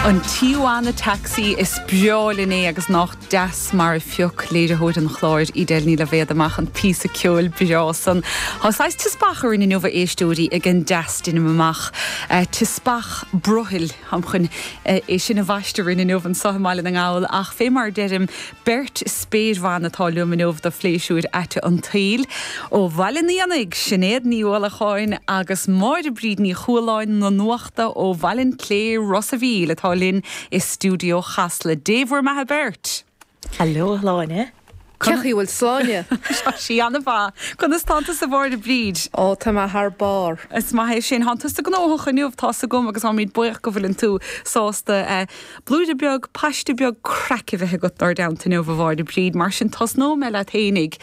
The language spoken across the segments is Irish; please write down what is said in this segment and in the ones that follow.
An Tijuana Taxi, is breá linn é agus nách deas mar a phioc léiritheoir an chláir, Edel Ní Loibhéad amach an píosa ceoil breá san. Tá saghas teaspach orainn inniu a éisteoirí ag an dteas deinim amach. Teaspach brothaill. Táim chun é sin a bhaisteadh orainn inniu anseo i mBaile na nGall ach fé mar a deirim, Beirt spéirbhan atá liom inniu do phléisiúir aite an tsaoil. Ó Bhaile an Éanaigh, Sinéad Ní Uallacháin agus Máire Bríd Ní Chualáin na nuachta ó Bhaile an tSléibhe, Ros a' Mhíl, atá linn i stiúideo Chasla. Dé bhur mbeatha beirt! Hallo a Shláine! Cén chaoi a bhfuil Sláine! Tá sí an-mhaith. Conas tánn tusa a Mháire Bríd? Ó, tá mé thar barr! Is maith é sin. Tánn tusa gnóthach inniu, tá's agam, agus táimid buíoch go bhfuileann tú sásta Blúire beag, paiste beag craic a bheith agat inár dteannta inniu, a Mháire Bríd, mar sin tosnóidh mé leat féinig,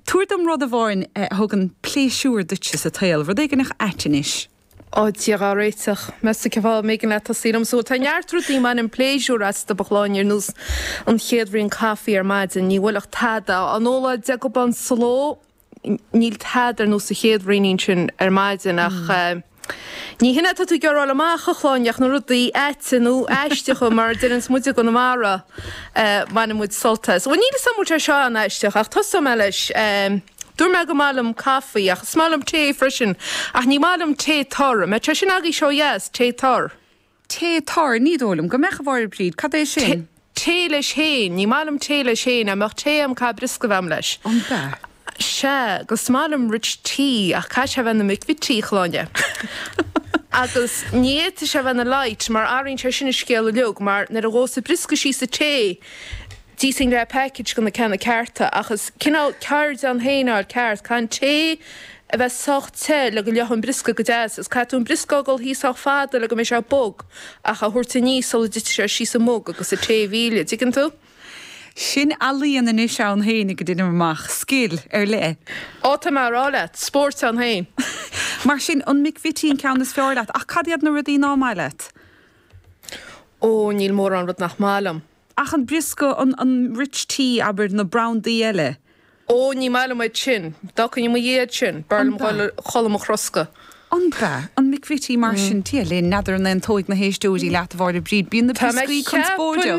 tabhair dom rud amháin a thugann pléisiúr duitse sa tsaol, rud éigineach ait anois. Ó, Dia dhá réiteach, meas tú cén fáth a mb'éigean leat tosaí liomsa. Tá neart rudaí a mbainim pléisiúr astu a Shláine ar nós an chéad bhraon caife ar maidin, ní bhuailfeadh tada, an ola deaghabán sló, Níl tada ar nós an chéad bhraoinín sin ar maidin ach ní shin é atá tú ag iarraidh a fháil amach, a Shláine, ach na rudaí aite nó aisteacha, mar a deireanns muid i gConamara, a mbaineann muid sult as. Bhuel, níl 'fhios a'm an bhfuil sé seo an-aisteach ach tosóidh mé leis. Dúirt mé go mba mhaith liom caife ach is maith liom tae freisin, ach ní maith liom tae tur, an mbeadh sé sin agaibhse ó dheas, tae tur? Tae tur, ní dóigh liom go mbeadh, a Mháire Bríd, cad é sin? Tae leis féin, ní maith liom tae leis féin, dá mbeadh tae a'm caithfidh briosca a bheith a'm leis. An mbeadh? Sea, agus is maith liom rich tea, ach caithfidh sé bheith na McVitie a Shláine. Agus ní fhéadfaidh sé bheith na light, mar athraíonn sé sin an scéal uiliug, mar nuair a ghabhfas an briosca síos sa tae, D'íosfainn leath package go na ceanna cearta, ach is cineál ceird ann féin é a fháil ceart, caithfidh an tae a bheith sách te le go leáfaidh an briosca go deas, is caithfidh tú an briosca a fhágáil thíos sách fada le go mbeidh sé bog ach a thabhairt aníos sula dtitfidh sé síos sa mug agus an tae a mhilleadh, an dtuigeann tú? Sin ealaín anois ann féinig deinim amach, scil ar leith. Ó, tá mé á rá leat, spóirt ann féin. Mar sin, an McVitie an ceann is fearr leat, ach cad iad na rudaí ná maith leat? Ó, níl mórán rud nach maith liom. Ach an briosca, an rich tea, abair, na brandaí eile? Ó, ní maith liom iad sin. D'fhágfainn i mo dhiaidh iad sin, b'fhearr liom dul a chodladh i mo throscadh. An b'ea? An McVitie mar sin? Dia linn, n'fheadar an aontóidh na héisteoirí leat, a Mháire Bríd, bíonn na brioscaí conspóideach!